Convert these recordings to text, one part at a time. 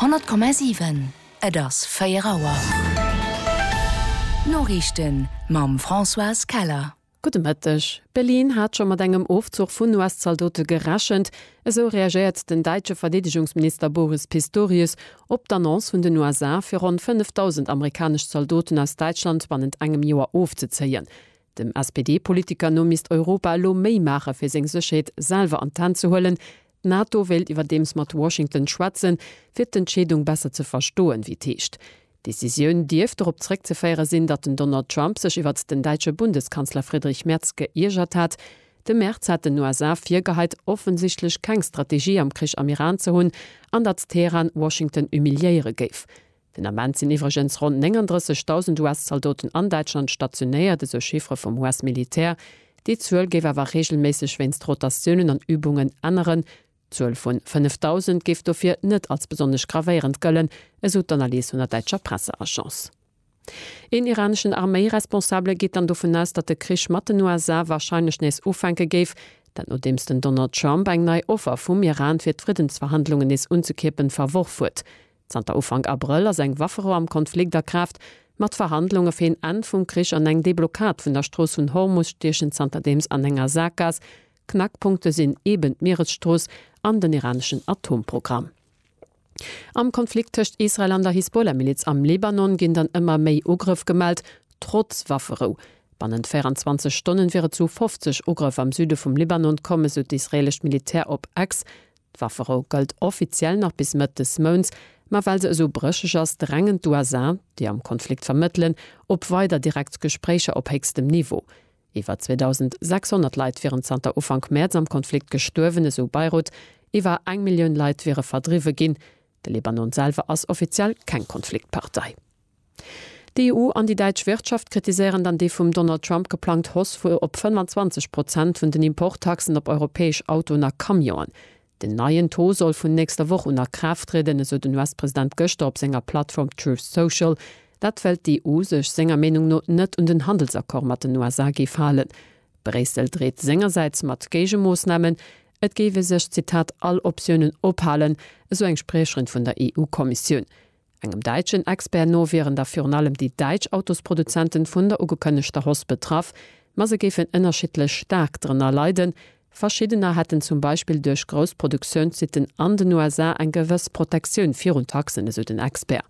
100,7 Et ass 4 Auer. D'Noriichten mam Françoise Keller. Gudde Mëtteg. Berlin hat scho mat engem Ofzuch vun US-Zaldote gerechent. Esou reagéiert den däitsche Verdeedegungsminister Boris Pistorius op d'Annonce vun den USA, fir ronn 5.000 amerikanesch Zaldoten aus Däitschland bannent engem Joer ofzezéien. Dem SPD-Politiker no misst Europa elo méi maache fir seng Sécherheet selwer an d'Hänn ze huelen, D'NATO wéilt iwwerdeems mat Washington schwätzen, fir d'Entscheedung besser ze verstoen, wéi et heescht. D'Decisioun dierft dorop zeréckzeféiere sinn, datt den Donald Trump sech iwwert den däitsche Bundeskanzler Friedrich Merz geiergert hat. De Merz hat den USA virgeheit, offensichtlech keng Strategie am Krich am Iran ze hunn an datt Teheran Washington humiliéiere géif. Den Ament sinn iwwregens ronn 39.000 US-Zaldoten an Däitschland stationéiert, esou Chiffere vum US-Militär. Déi Zuel géif awer reegelméisseg wéinst Rotatiounen an Übungen änneren. D'Zuel vu 5.000 géif dofir net als besonnesch gravéierend gëllen, esou d'Analys vun der däitscher Presseagence. Een iraneschen Arméi-Responsabele geet dann dovun aus, datt de Krich mat den USA warscheinlech nees ufänke géif. Dat nodeems den Donald Trump eng nei Offer vum Iran, fir d'Friddensverhandlungen nees unzekierpen, verworf huet. Zanter Ufank Abrëll ass eng Wafferou am Konflikt a Kraaft, mat Verhandlunge fir een Enn vum Krich an eng Deblockad vun der Strooss vun Hormus stiechen zanterdeems an enger Saakgaass. Knackpunkte sinn eben d'Mieresstrooss an den iraneschen Atomprogramm. Am Konflikt tëscht Israel an der Hisbollah-Miliz am Libanon ginn dann ëmmer méi Ugrëff gemellt, trotz Wafferou. Bannent 24 Stonnen wier et zu 50 Ugrëff am Süde vum Libanon komm, esou d'israeelescht Militär op X. D'Wafferou gëllt offiziell nach bis Mëtt des Mounts, ma well se esou brécheg ass, drängen d'USA, déi am Konflikt vermëttelen, op weider direkt Gespréicher op héchstem Niveau. Iwwer 2.600 Leit wieren zanter Ufank Mäerz am Konflikt gestuerwen, esou Beirut. Iwwer eng Millioun Leit wiere verdriwwe ginn. De Libanon selwer ass offiziell keng Konfliktpartei. D'EU an déi däitsch Wirtschaft kritiséieren dann déi vum Donald Trump geplangt Hausse vu op 25 Prozent vun den Importtaxen op europäesch Autoen a Camionen. Den neien Taux soll vun nächster Woch un a Kraaft trieden, esou den US-President gëschter op senger Plattform Truth Social. Dat well d'EU sech senger Meenung no net un den Handelsaccord mat den USA géif halen. Bréissel dreet sengersäits mat Géigemoossnamen. Et géif ee sech, Zitat, all Optiounen ophalen, esou eng Spriecherin vun der EU-Kommissioun. Engem däitschen Expert no wieren da virun allem déi däitsch Autosproduzenten vun der ugekënnegter Hoss betraff, ma se géifen ënnerschiddlech staark drënner leiden. Verschiddener hätten zum Beispill duerch grouss Produktiounssitten an den USA eng gewëss Protektioun virun Taxen, esou den Expert.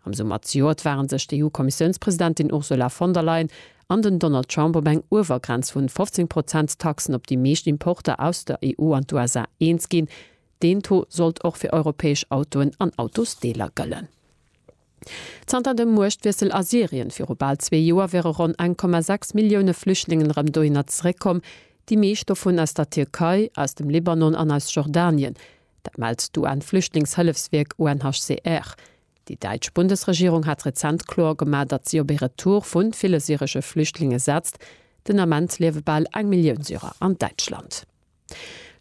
Am Summer zejoert ware sech d'EU-Kommissiounspresidentin Ursula von der Leyen an den Donald Trump op eng Uewergrenz vun 15 Prozent Taxen op déi meescht Importer aus der EU an d'USA eens ginn, Deen Taux sollt och fir europäesch Autoen an Autosdeeler gëllen. Zanter dem Muechtwiessel a Syrien viru bal zwee Joer wiere ronn 1,6 Millioune Flüchtlingen erëm dohinner zeréckkomm, déi meescht dovun aus der Tierkei, aus dem Libanon an aus Jordanien. Dat mellt d'UN-Flüchtlingshëllefswierk UNHCR. Déi däitsch Bundesregierung hat rezent kloer gemaach, datt si op ee Retour vu ville syresche Flüchtlinge setzt. Den Ament liewe bal eng Millioun Syrer an Däitschland.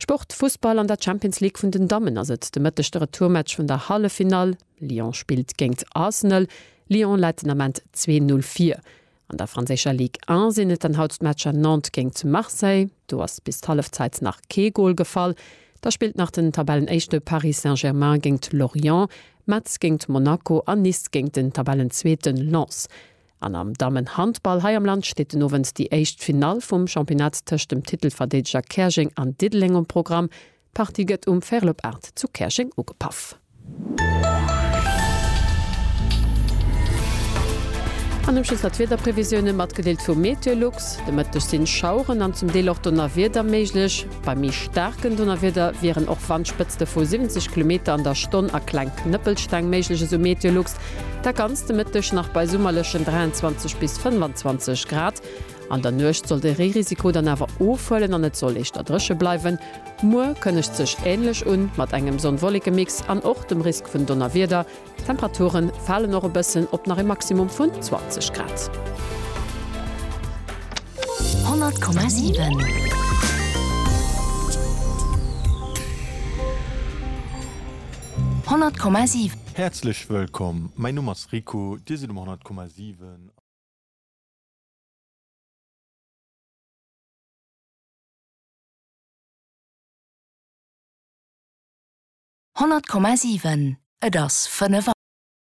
Sport, Fussball, An der Champions League vun den Dammen ass et de Mëtteg de Retourmatch vun der Halleffinall, Lyon spillt géingt Arsenal. Lyon läit den Ament zwee Null vir. An der franséischer Ligue 1 sinn et dann haut d'Matcher Nantes géingt Marseille, do ass bis d'Hallefzeit nach kee Gol gefall. Da spillt nach den Tabellenéischte Paris Saint-Germain géingt Lorient, Metz géingt Monaco a Nice géingt den Tabellenzweete Lens. An am Dammenhandball hei am Land steet den Owend déi éischt Finall vum Championnat tëscht dem Titelverdeedeger Käerjeng an Diddeleng um Programm. D'Partie gëtt um Fairlop Art zu Käerjeng ugepaff. An um Schluss nach d'Wiederprevisioune matgedeelt vu Meteolux, De Mëtteg sinn Schaueren an zum Deel och Donnerwieder méiglech. Bei méi staarken Donnerwieder wieren och Wandspëtzte vu 70 Kilometer an der Stonn a kleng Knëppelsteng méiglech, esou Meteolux. Dat ganzt de Mëtteg nach bei summerlechen 23 bis 25 Grad. An der Nuecht soll de Reerisiko dann awer ofhuelen an et soll éischter dréche bleiwen. Muer kënnegt sech änlech un, mat engem Sonn-Wolleke-Mix an och dem Risk vun Donnerwieder. D'Temperature falen och e bëssen, op nach e Maximum vun 20 Grad. 100,7. 100,7. Häerzlech wëllkomm, mäin Numm ass Rico, Dir sidd um 100,7. Honnert Komma siwen, et ass fënnef Auer.